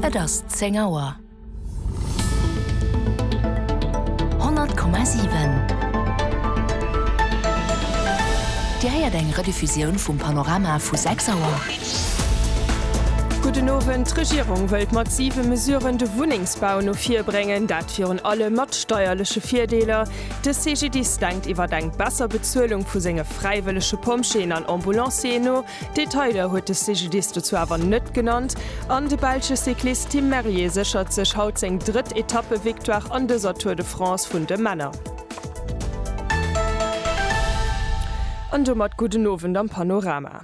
Et ass zéng Auer. 100,7 Dir héiert eng Rediffusioun vum Panorama vu 6 Auer. Gudden Owend. D'Regierung wëllt mat siwe Mesuren de Wunnengsbau no vir bréngen, dat virun allem mat steierleche Virdeeler. De CGDIS denkt iwwer eng besser Bezuelung vu senge fräiwëllege Pompjeeën an Ambulancieren no. Detailer huet de CGDIS dozou awer net genannt an de belsche Cyclist Tim Merlier séchert sech haut seng drëtt Etappevictoire an dëser Tour de France vun de Männer. An domat gudden Owend am Panorama.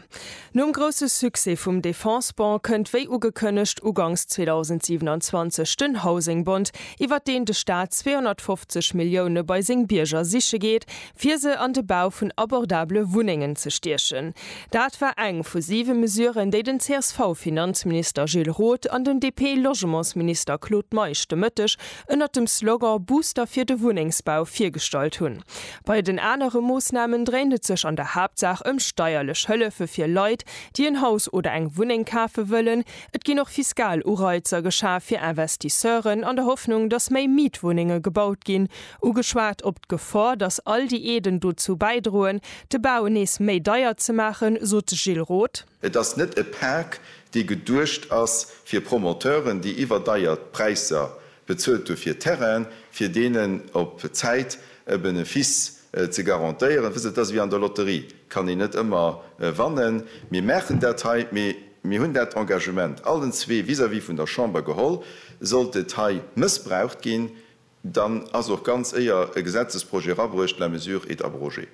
Nom grousse Succès vum Defense-Bond kënnt wéi ugekënnegt uganks 2027 den Housing-Bond, iwwert deen de Staat 250 Millioune bei seng Bierger siche geet, fir se an de Bau vun abordabele Wunnengen ze stiechen. Dat war eng vu siwe Mesuren, déi den CSV-Finanzminister Gilles Roth an den DP-Logementsminister Claude Meisch de Mëtteg ënnert dem Slogan Booster fir de Wunnengsbau virgestallt hunn. Bei den anere Moossnamen dréint et sech an der Haaptsaach ëm steierlech Hëllefe fir Leit, déi en Haus oder eng Wunneng kafe wëllen. Et ginn och fiskal Ureizer geschaf fir Investisseuren, an der Hoffnung, datt méi Mietwunnenge gebaut ginn. Ugeschwat op d'Gefor, datt all déi Aiden dozou bäidroen, de Bau nees méi deier ze maachen, sot de Gilles Roth. Et ass net e Pak, dee geduecht ass fir Promoteuren, déi iwwerdeiert Präisser bezuelt hu fir Terrainen, fir deenen op Zäit e Benefice ze garantéieren. Wësst Der, et ass ewéi an der Lotterie, et kann een net ëmmer wannen. Mir maachen dat hei, mee mir hunn dat Engagement allen zwee vis-à-vis vun der Chamber geholl. Sollt et hei mëssbraucht ginn, Dann ass och ganz éier e Gesetzesprojet erabruecht, la mesure est abrogée.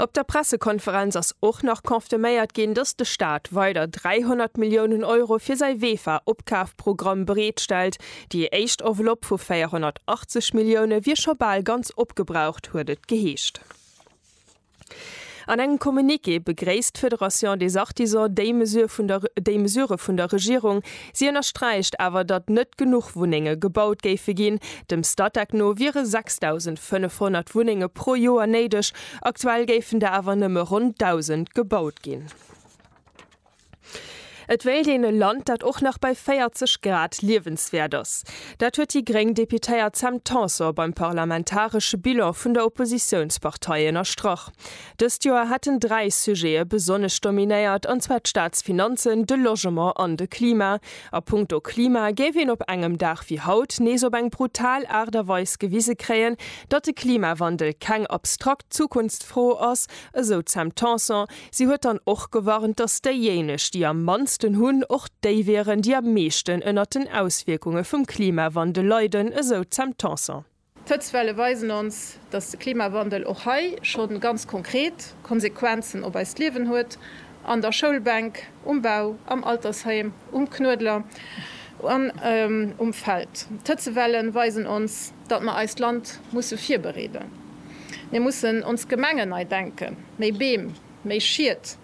Op der Pressekonferenz ass och nach confirméiert ginn, datt de Staat weider 300 Milliounen Euro fir säi Wefa-Opkafprogramm bereet stellt. Déi éischt Enveloppe vu 480 Millioune wier scho bal ganz opgebraucht, huet et geheescht. An engem Communiqué begréisst d'Fédération des Artisans déi Mesure vun der déi Mesurë vun der Regierung. Si ënnersträicht awer, datt net genuch Wunnenge gebaut géife ginn. Dem Statec no wiere 6.500 Wunnenge pro Joer néideg, aktuell géifen der awer nëmme ronn 1.000 gebaut ginn. Et wéilt een e Land, dat och nach bei 40 Grad liewenswäert ass. Dat huet déi gréng Deputéiert Sam Tanson beim parlamentaresche Bilan vun der Oppositiounspartei ënnerstrach. Dëst Joer hätten dräi Sujete besonnesch dominéiert, an zwar d'Staatsfinanzen, de Logement an de Klima. A punkto Klima géif een op engem Dag wéi haut nees op eng brutal Aart a Weis gewise kréien, datt de Klimawandel keng abstrakt Zukunftsfro ass, esou d'Sam Tanson. Si huet dann och gewarnt, datt déijéineg, déi am mannsten hunn, och déi wieren, déi am meeschten ënnert den Auswierkunge vum Klimawandel leiden, esou d'Sam Tanson. D'Hëtztwelle weisen ons, datt de Klimawandel och hei scho ganz konkret Konsequenzen op eist Liewen huet, an der Schoulbänk, um Bau, am Altersheim, um Knuedler an um Feld. D'Hëtzewellen weisen ons, datt mer eist Land musse virbereeden, mir mussen ons Gemengen nei denken, méi Beem, méi Schiet,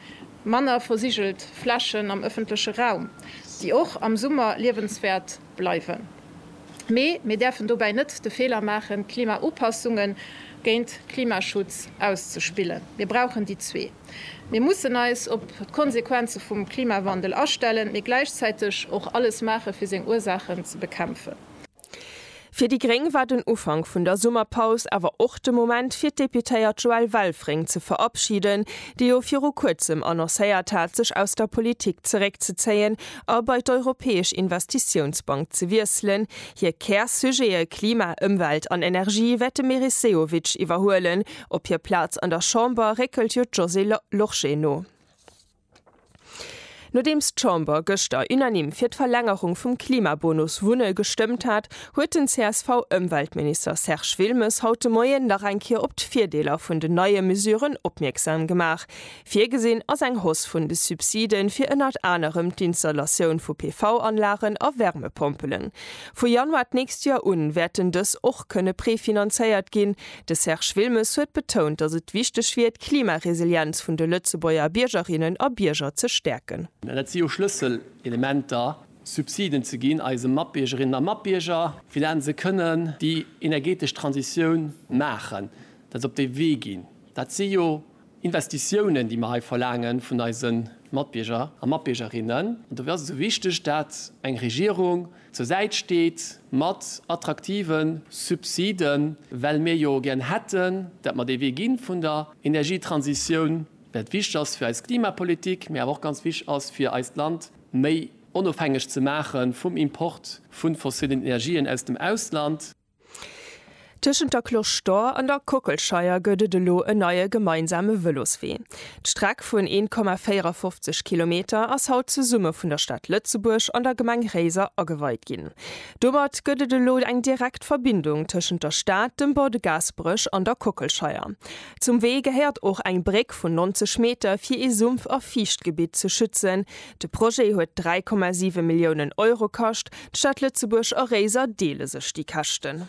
manner versigelt Flächen am ëffentleche Raum, déi och am Summer liewenswäert bleiwen. Mee mir däerfen dobäi net de Feeler maachen, Klimaupassunge géint Klimaschutz auszespillen. Mir brauchen déi zwee. Mir mussen eis op d'Konsequenze vum Klimawandel astellen, mee gläichzäiteg och alles maache fir seng Ursaachen ze bekämpfen. Fir déi gréng war den Ufank vun der Summerpaus awer och de Moment fir d'Deputéiert Joelle Welfring ze verabschiden, déi jo viru kuerzem annoncéiert hat, sech aus der Politik zeréckzezéien a bei d'Europäesch Investitiounsbank ze wiesselen. Hir Kär-Sujete Klima, Ëmwelt an Energie wäert de Meris Sehovic iwwerhuelen. Op hir Plaz an der Chamber réckelt jo d'Josée Lorsché no. Nodeems d'Chamber gëschter unanime fir d'Verlängerung vum Klimabonus Wunne gestëmmt hat, huet den CSV-Ëmweltminister Serge Wilmes haut de Moien nach eng Kéier op d'Virdeeler vun den neie Mesuren opmierksam gemaach. Virgesinn ass eng Hausse vun de Subside fir ënnert anerem d'Installatioun vu PV-Anlagen a Wärmepompelen. Vu Januar d'nächst Joer un wäerten dës och kënne prefinanzéiert ginn. De Serge Wilmes huet betount, datt et wichteg wier, d'Klimaresilienz vun de Lëtzebuerger Biergerinnen a Bierger ze stäerken. An et si jo Schlësselelementer, Subsiden ze ginn eise Matbiergerinnen a Matbierger, fir dat se kënnen déi energetesch Transitioun maachen, dat se op dee Wee ginn. Dat si jo Investitiounen, déi mer hei verlaange vun eise Matbierger a Matbiergerinnen. An dofir ass et esou wichteg, dat eng Regierung zur Säit steet mat attraktive Subsiden, well mir jo gären hätten, dat mer dee Wee gi vun der Energietransitioun, well et wichteg ass fir eis Klimapolitik, mä awer och ganz wichteg ass fir eist Land méi onofhängeg ze maache vum Import vu fossillen Energien aus dem Ausland. Tëschent der Cloche d'Or an der Kockelscheier gëtt et elo en neie gemeinsame Vëloswee. D'Streck vun 1,54 Kilometer ass haut zesumme vun der Stad Lëtzebuerg an der Gemeng Réiser ageweit ginn. Domat gëtt et elo eng direkt Verbindung tëschent der Stad, dem Bord de Gaasperech an der Kockelscheier. Zum Wee gehéiert och eng Bréck vun 90 Meter fir ee Sumpf a Fiichtgebitt ze schützen, De Projet huet 3,7 Milliounen Euro kascht. D'Stad Lëtzebuerg a Réiser deele sech déi Käschten.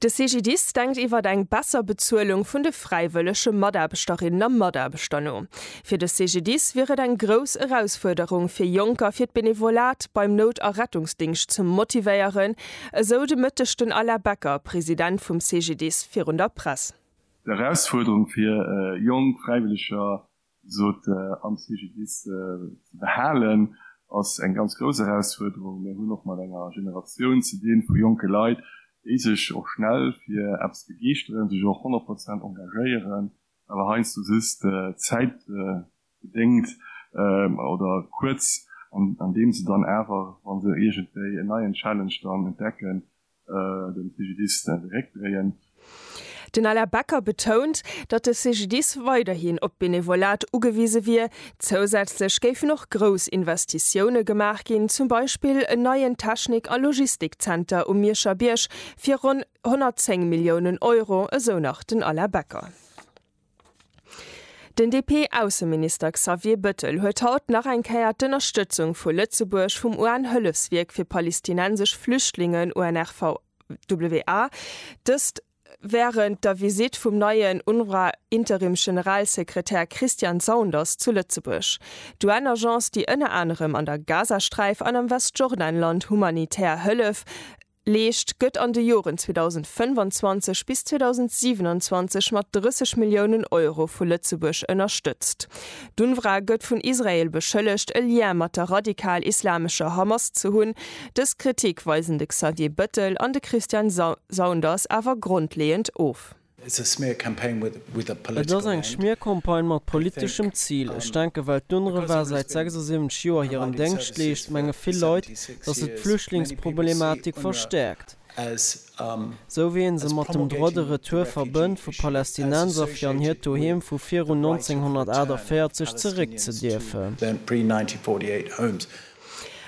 De CGDIS denkt iwwer eng besser Bezuelung vun de fräiwëllege Mataarbechterinnen a Mataarbechter no. Fir de CGDIS wier et eng grouss Erausfuerderung, fir Jonker fir d'Benevolat beim Nout a Rettungsdingscht ze motivéieren, esou de Mëtteg den Alain Becker, President vum CGDIS, virun der Press. D'Erausfuerderung fir jonk Fräiwëlleger sot Anne Figidis. Ze behalen ass eng ganz grouss Erausfuerderung. Mir hunn och mat enger Generatioun ze dinn vu jonke Leit, déi sech och schnell fir eppes begeeschteren, sech och 100 Prozent engagéieren, awer heiansdo just zäitbedéngt oder kuerz, andeem se dann awer, wa se iergendwéi en neien Challenge dann entdecken, de CGDIS zeréckdréien. Den Alain Becker betount, datt de CGDIS weiderhin op d'Benevolat ugewise wier. Zousätzlech géifen och grouss Investitioune gemaach ginn, zum Beispill en neien Technik a Logistikzenter um Mierscher Bierg fir ronn 110 Milliounen Euro, esou nach den Alain Becker. Den DP-Ausseminister Xavier Bëttel huet haut nach eng Kéier d'Ënnerstëtzung vu Lëtzebuerg vum UN-Hëllefswierk fir palestinensesch Flüchtlingen, UNRWA, dëst wärend der Visitt vum neien UNRWA-Interimsgeneralsekretär Christian Saunders zu Lëtzebuerg. D'UN-Agence, déi ënner anerem an der Gazasträif an am Westjordanland humanitär Hëllef Leescht, gëtt an de Joren 2025 bis 2027 mat 30 Milliounen Euro vu Lëtzebuerg ënnerstëtzt. D'UNRWA gëtt vun Israel beschëllegt, e Lien mat der radikal-islamescher Hamas ze hunn. Dës Kritik weisen de Xavier Bëttel an de Christian Saunders awer grondleeënd of. Et ass eng Schmiercampagne mat politeschem Zil. Ech denken, well d'UNRWA säit 76 Joer hiren Déngscht leescht, menge vill Leit, datt se d'Flüchtlingsproblematik verstäerkt, sou wéi ee se mat dem Droit de retour verbënnt, vu Palästinenser fir an hiert Doheem vu virun 1948 zeréckzedierfen.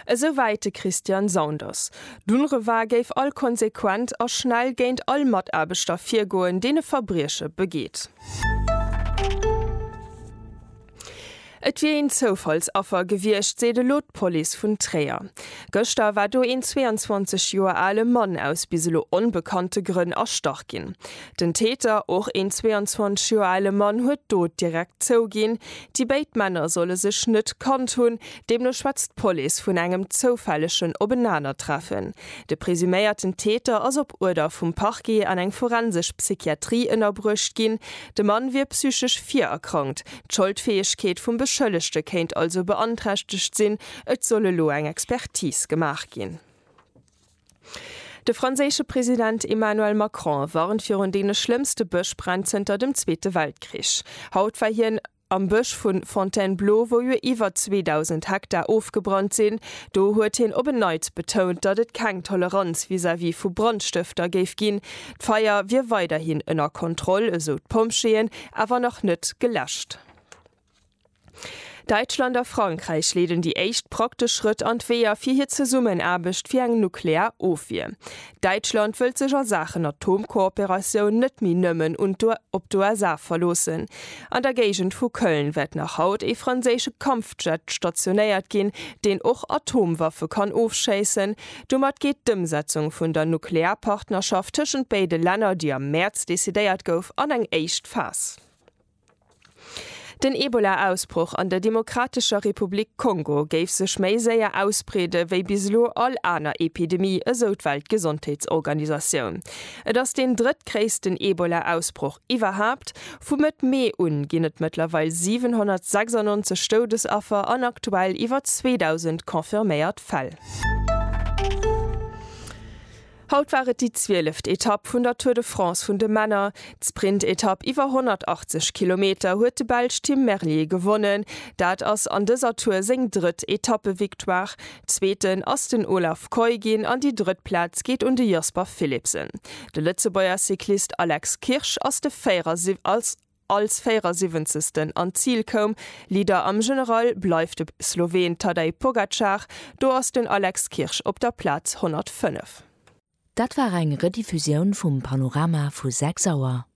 Esou wäit de Christian Saunders. D'UNRWA géif all konsequent a schnell géint all Mataarbechter virgoen, deen e Verbrieche begeet. Et wier een Zoufallsaffer gewiescht, seet elo d'Police vun Tréier. Gëschter war do een 22 Joer ale Mann aus bis elo onbekannte Grënn erstach ginn. Den Täter, och een 22 Joer ale Mann, huet d'Dot direkt zouginn. Déi béid Männer solle sech net kannt hunn. Deemno schwätzt d'Police vun engem zoufällegen Openanertreffen. De presuméierten Täter ass op Uerder vum Parquet an eng forensesch Psychiatrie ënnerbruecht ginn. De Mann wier psychesch virerkrankt, d'Scholdfäegkeet vum Beschëllegte kéint also beanträchtegt sinn. Et soll elo eng Expertis gemaach ginn. De franséische President Emmanuel Macron warnt virun deene schlëmmste Bëschbränn zënter dem Zweete Weltkrich. Haut war hien. Am Bësch vu Fontainebleau, wou jo iwwer 2.000 Hektar ofgebrannt sinn, do huet hien op en Neits betount, datt et keng Toleranz vis-à-vis vu Brandstëfter géif ginn. D'Feier wier weiderhin ënner Kontroll, esou d'Pompjeeën, awer nach net geläscht. Däitschland a Frankräich leeden déi éischt praktesch Schrëtt an d'Weeër fir hir Zesummenaarbecht fir eng nuklear Ofwier. Däitschland wëllt sech a Saachen Atomkooperatioun net méi nëmmen un d'UE op d'USA verloossen. An der Géigend vu Köln wäert nach haut ee franséische Kampfjet stationéiert ginn, deen och Atomwaffe kann ofschéissen. Domat geet d'Ëmsetzung vun der Nuklearpartnerschaft tëschent béide Länner, déi am Mäerz decidéiert gouf, an eng éischt Phas. Den Ebola-Ausbroch an der Demokratescher Republik Kongo géif sech méi séier ausbreede wéi bis elo all aner Epidemie, esou d'Weltgesondheetsorganisatioun. Et ass deen drëttgréissten Ebola-Ausbroch iwwerhaapt. Vu Mëtt Mee un ginn et mëttlerweil 796 Doudesaffer an aktuell iwwer 2.000 confirméiert Fäll. Haut war et déi zwieleft Etapp vun der Tour de France vun de Männer. D'Sprintetapp iwwer 180 Kilometer huet de Belsch Tim Merlier gewonnen. Dat ass an dëser Tour seng drëtt Etappevictoire. Zweeten ass den Olav Kooij ginn an déi drëtt Plaz geet un de Jasper Philipsen. De Lëtzebuerger Cyclist Alex Kirsch ass de 74. als 74. an d'Zil koum. Leader am General bleift de Sloween Tadej Pogacar, do ass den Alex Kirsch op der Plaz 105. Dat war eng Rediffusioun vum Panorama vu 6 Auer.